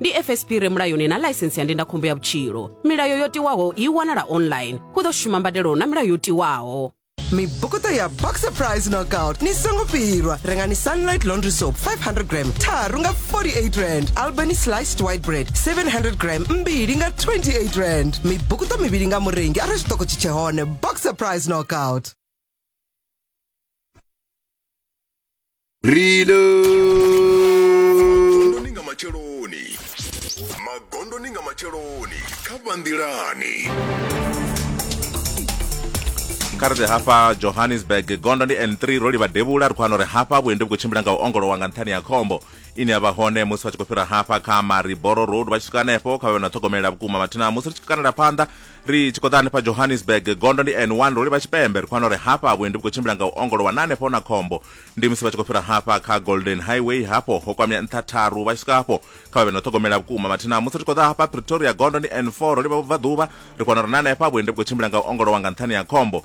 ndi fsp re mulayoni na ḽaisensi ya ndindakhombo ya vhutshilo milayo yo tiwaho i wanala online hu ḓo shuma mbadelo na milayo yo tiwaho mibukuṱo ya boxer price knockout ni songo fhirwa rengani sunlight laundry soap 500 gram tharu nga 48 rand albany sliced white bread 700 gram mbili nga 28 rand mibukuṱo mivhili nga murengi arali zwiṱoko tshi tshe hone boxer price knockout rilo magondoni nga matsheloni magondoni nga matsheloni kha vhanḓilani kha ri ḓe hafha johannesburg gondo ndi n3 ro livha devhula ri khou wana uri hafha vhuendi vhu khou tshimbila nga u ongolowa nga nṱhani ya khombo ine ya vha hone musi vha tshi khou fhira hafha kha mariboro road vha tshi swika hanefho kha vhe na ṱhogomelela vhukuma mathina musi ri tshi kanela phanḓa ri tshi khou ḓa hanefha johannesburg gondo ndi n1 ro livha tshipembe ri khou wana uri hafha vhuendi vhu khou tshimbila nga u ongolowa na hanefho na khombo ndi musi vha tshi khou fhira hafha kha golden highway hafho ho kwamea nṱha tharu vha tshi swika hafho kha vha vhe na u ṱhogomela vhukuma mathina musi ri tshi khou ḓa hafha pretoria gondo ndi n4 ro livha vhubvaḓuvha ri khou wana uri na hanefha vhuendi vhu khou tshimbila nga u ongolowa nga nṱhani ya khombo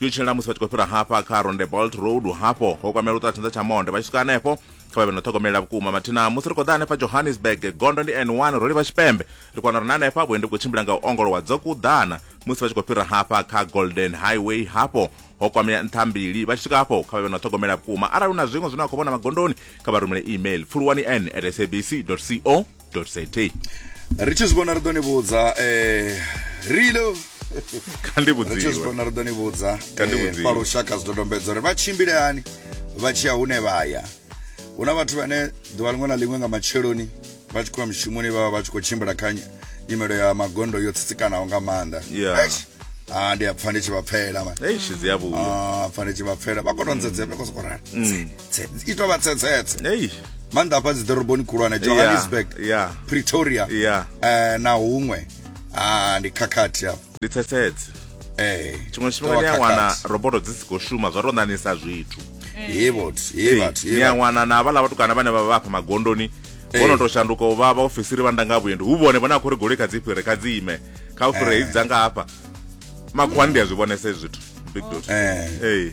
yo tshilela musi vha tshi khou fhira hafha kha rondebolt road hafho ho kwamela u ṱola tshanḓa tsha monde vha tshi swika hanefho kha vha vhe no ṱhogomelela vhukuma mathina musi ri khou ḓa hanefha johannesburg gondo ndi n1 ro livha tshipembe ri kona uri na hanefha vhuendi vhu khou tshimbila nga u ongolowa dzo kuḓana musi vha tshi khou fhira hafha kha golden highway hafho ho kwamea nṱha mbili vha tshi swika hafho kha vha vhe no ṱhogomela vhukuma arali hu na zwiṅwe zwine wa khou vhona magondoni kha vha rumele email pfuluwani n at sabc co za ri tshi zwi vhona ri ḓo ni vhudza eh, rilo kandi vhudziwezvona ri ḓo ni vhudza eh, pa lushaka zwidodombedzwa uri vha tshimbile hani vha tshi ya hune vha ya hu na vhathu vhane ḓuvha liṅwe na liṅwe nga matsheloni vha tshi khoya mushumoni vhavha vha tshi khou tshimbila kha nyimelo ya magondo yo tsitsikanaho nga maanḓa ah, ndi a pfa ndi tshi vha pfela ah, pfa ndi tshi vha pfela vha kono nzedzea vha khou sokorana mm. i tovha tsetsetse maanḓa hafha dzi ḓoroboni khulwane johannesburg pretoria eh, na huṅwe ah, ndi khakhathi hafha ndi tsetsetse eh, tshiṅwe tshifhinga ni a wana roboto dzi si khou shuma zwa tou ṋanisa zwithu ni a wana na havhala vhatukana vhane vha vha afha magondoni vhono tou shanduka u vha vhaofisiri vha ndanga vhuendi hu vhone vhone a khou ri goloi kha dzi fhire kha dzi ime kha u fhire hedzi dza nga hafha makhuwani ndi a zwi vhonesa hezwi zwithu big dot eh.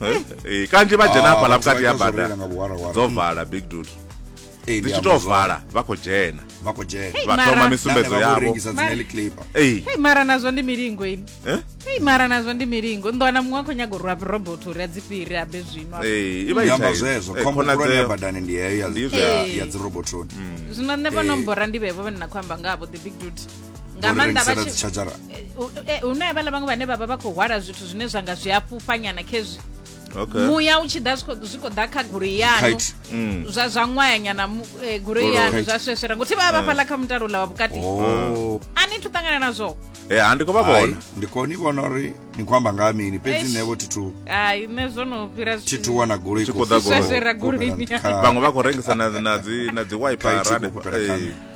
eh, kanzhi vha dzhena hafhaḽa vhukati ya bada dzo vala big dul dzi tshi tou vala vha khou dzhena vha khou dzhena vha thoma misumbedzo yavho mara nazwo ndi milingo ini eh? ei mara nazwo ndi milingo ndo wana muṅwe a khou nyaga u rwa robot uri a dzi fhiri a be zwino amba zwezwo eh, khombo khulwane ya badani ndi heyo ya dzirobotoni mm. zwino nṋe vho nombora ndi vhevo vhane na khou amba nga vho the big duty nga maanḓa vha tshi charger eh, hune havhala vhaṅwe vhane vhavha vha khou hwala zwithu zwine zwa nga zwi a fhufhanyana khezwi muya u tshi ḓa zwi khou ḓa kha goloi yanu mm. zwa zwa ṅwayanyana eh, goloi yanu zwa sweswera ngothi vha vha fhala kha mutalo ula wa vhukati oh. a ni thu ṱangana nazwo e ha ndi khou vha vhona ndi khou ni vhona uri ni khou amba nga mini fhedzi nṋe vho thithu hai nṋe zwo no fhira thithu wana goloi khou ḓa goloi vhaṅwe vha khou rengisa na dzi na dzi wiper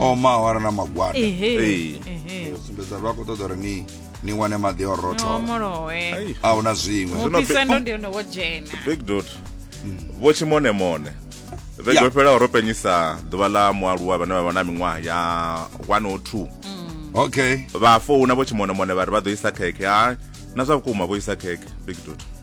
o ma awara na magwada Ehe, Ee. ehe. sumbedza vha khou ṱoḓa uri ni ni wane maḓi o No, rothola molowe Ai, a hu na zwiṅwe Zwino mupise pe- ndo ndi hone wo dzhena big dot vho tshimonемone vhege Yeah. yo fhelaho ro penyisa ḓuvha ḽa mualuwa vhane vha vha na miṅwaha ya 102 okay vha founa vho tshimonемone vha ri vha ḓo isa khekhe ha na zwa vhukuma vho isa khekhe big dot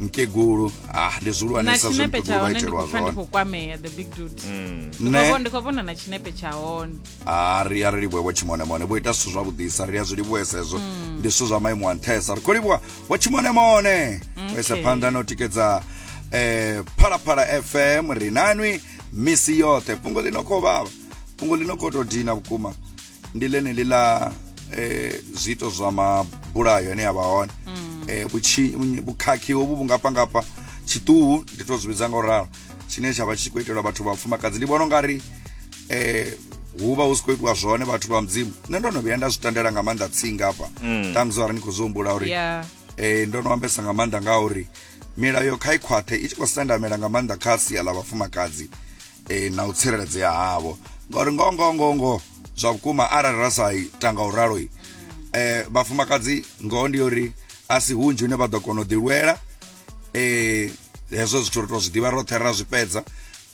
mukegulu ah ndi zwihulwanesa zwe mukegulu vha itelwa zwone ndi khou vhona na tshinepe tsha hone a ri a ri livhuwe vho tshimonemone vho ita zwithu zwavhuḓisa ri a zwi livhuwesa hezwo mm. ndi zwithu zwa maimo a nṱhesa ri khou livhuwa vho tshimonemone vho isa phanḓa na u tikedza eh phalaphala fm rinanwi misi yoṱhe fhungo ḽi no khou vhavha fhungo ḽi no khou tou dina vhukuma ndi ḽeneḽi ḽa eh, zwiito zwa mabulayo ane a vha hone mm. eh, vhukhakhi hovhu vhu nga pangafha tshiṱuhu ndi to zwi vhidza nga u ralo tshine tsha vha tshi khou itelwa vhathu vhafumakadzi ndi vhona u nga ri eh, hu vha hu si khou itiwa zwone vhathu vha mudzimu nṋe ndo no vhuya nda zwi tandela nga maanḓa tsinga hafha mm. ṱamusi arali ni khou zwi humbula uri eh, ndo no ambesa nga maanḓa nga uri milayo kha i khwaṱhe i tshi khou sendamela nga maanḓa kha sia ḽa vhafumakadzi e, na u tsireledzea havho ngauri ngoho ngoho ngoho ngoho zwa vhukuma arali ra sa ita nga u ralo e, vhafumakadzi ngoho ndi uri a si hunzhi hune vha ḓo kona u ḓilwela e, hezwo zwithu ri to zwi ḓivha roṱhe ra zwi fhedza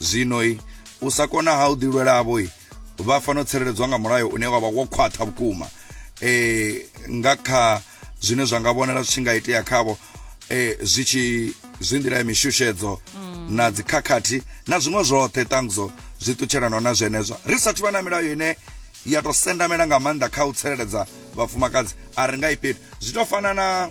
zwino i u sa kona ha u ḓilwela havho i vha fanela u tsireledzwa nga mulayo une wavha wo khwaṱha vhukuma e, nga kha zwine zwa nga vhonala zwi tshi nga itea khavho eh, zwi tshi zwi nḓila ya mishushedzo mm. na dzikhakhathi na zwiṅwe zwoṱhe ṱangudzo zwi ṱutshelanaho na zwenezwo ri sathu vha na milayo ine ya tou sendamela nga maanḓa kha u tsireledza vhafumakadzi a ri nga ifheli zwi tou fana na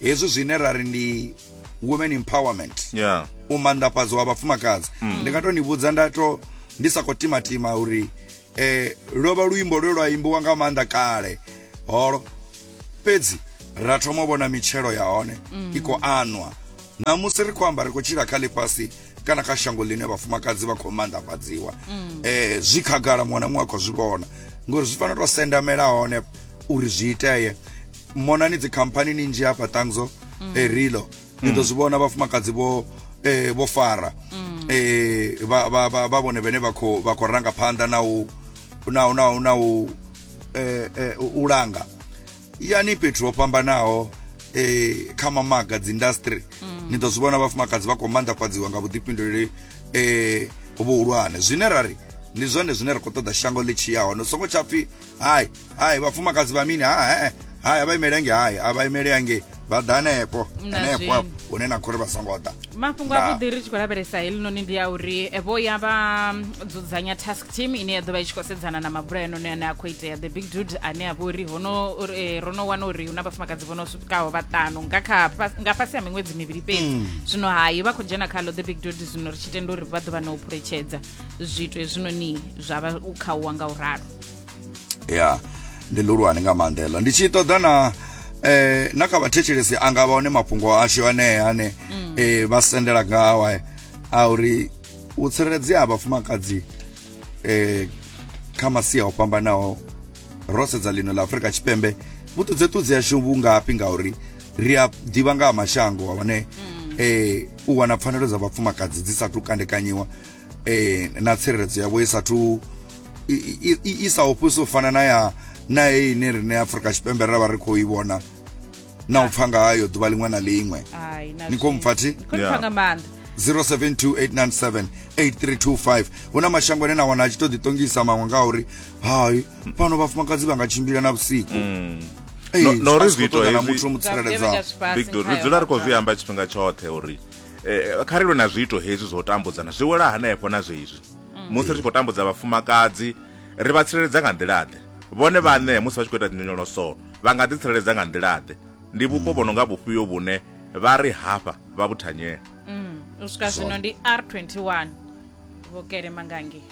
hezwi zwine ra ri ndi women empowerment yeah. u manḓafhadzwa wa vhafumakadzi mm. ndi nga tou ni vhudza nda to ndi sa khou timatima uri eh lwo vha luimbo lwe lwa imbiwa nga maanḓa kale holo fhedzi ra thoma u vhona mitshelo ya hone mm. i khou anwa namusi ri khou amba ri khou tshila kha ḽifhasi kana kha shango ḽine vhafumakadzi vha khou maanḓafhadziwa mm. eh zwi khagala muṅwe na muṅwe a khou zwi vhona ngori zwi fanela u sendamela hone uri zwi itee monani dzikhamphani ni nzhi hafha ṱangzo mm. erilo ni ḓo zwi vhona vhafumakadzi vho eh, vho fara mm. eh, vha, vha, vha, vha vhone vhene vha khou vha khou ranga phanḓa na u na u na u na u eh, eh, u langa yani fhethu ho fhambanaho eh, kha mamaga dzi industry mm. ni ḓo zwi vhona vhafumakadzi vha khou manḓafhadziwa nga vhuḓifhinduleli eh, vhuhulwane zwine ra ri ndi zwone zwine ra khou ṱoḓa shango ḽi tshiyaho no songo tsha pfhi hai hai vhafumakadzi vha mini ha he hai a vha imele hange hai a vha imele hange vha ḓa hanefho Na hanefho zwino. afho hune na khou ri vha songo ḓa mafhungo Nda. avhuḓi ri tshi khou lavhelesa helinoni ndi a uri eh, vho ya vha mm, dzudzanya task team ine ya ḓo vha i tshi khou sedzana na mabulayo noni ane a khou itea the big dude ane a vha uri hono uri, eh, ro no wana uri hu na vhafumakadzi vho no swikaho vhaṱanu nga kha fas- nga fhasi ha miṅwedzi mivhili fhedzi zwino hayi vha khou dzhena khalo the big dude zwino ri tshi tenda uri vha ḓo vha na u phuletshedza zwithu hezwinoni zwa vha u khauwa nga u ralo ya ndi ḽihulwane nga maanḓa heḽo ndi tshi ṱoḓa na eh na kha vhathetshelesi anga vha hone mafhungo ashu anea ane mm. eh vha sendela ngawa eh, a uri u tsireledzea ha vhafumakadzi eh kha masia o fhambanaho ro sedza ḽino ḽa afurika tshipembe vhuṱudzeṱudzi yashu vhungafhi ngauri ri a ḓivha nga ha mashango hone um mm. eh, u wana pfanelo dza vhafumakadzi dzi sa tu kandekanyiwa eh na tsireledzo yavho i sathu i sa ofhisi u fana na ya na heyi ine rine afrika tshipembe ra vha ri khou i vhona na u pfa nga hayo ḓuvha liṅwe na liṅwe ni khou mpfa thi 0728978325 hu na mashango ane na wana a tshi to ḓiṱongisa maṅwe nga uri hai fhano vhafumakadzi vha nga tshimbila na vhusiku mm. no ri zwi ito hezwi muthu mutsireledzaho big do ri dzula ri khou zwi amba tshifhinga tshoṱhe uri eh, kha ri lwe na zwiito hezwi zwo tambudzana zwi wela hanefho na zwezwi mm. musi ri tshi khou tambudza vhafumakadzi ri vha tsireledza nga nḓilaḓe vhone vhaṋe musi vha tshi khou ita dzinyonyoloso vha nga ḓitsireledza nga nḓilaḓe ndi vhupo vho no nga vhufhio vhune vha ri hafha vha vhuthanyela mm, u swika zwino ndi r 21 vhokele mangangi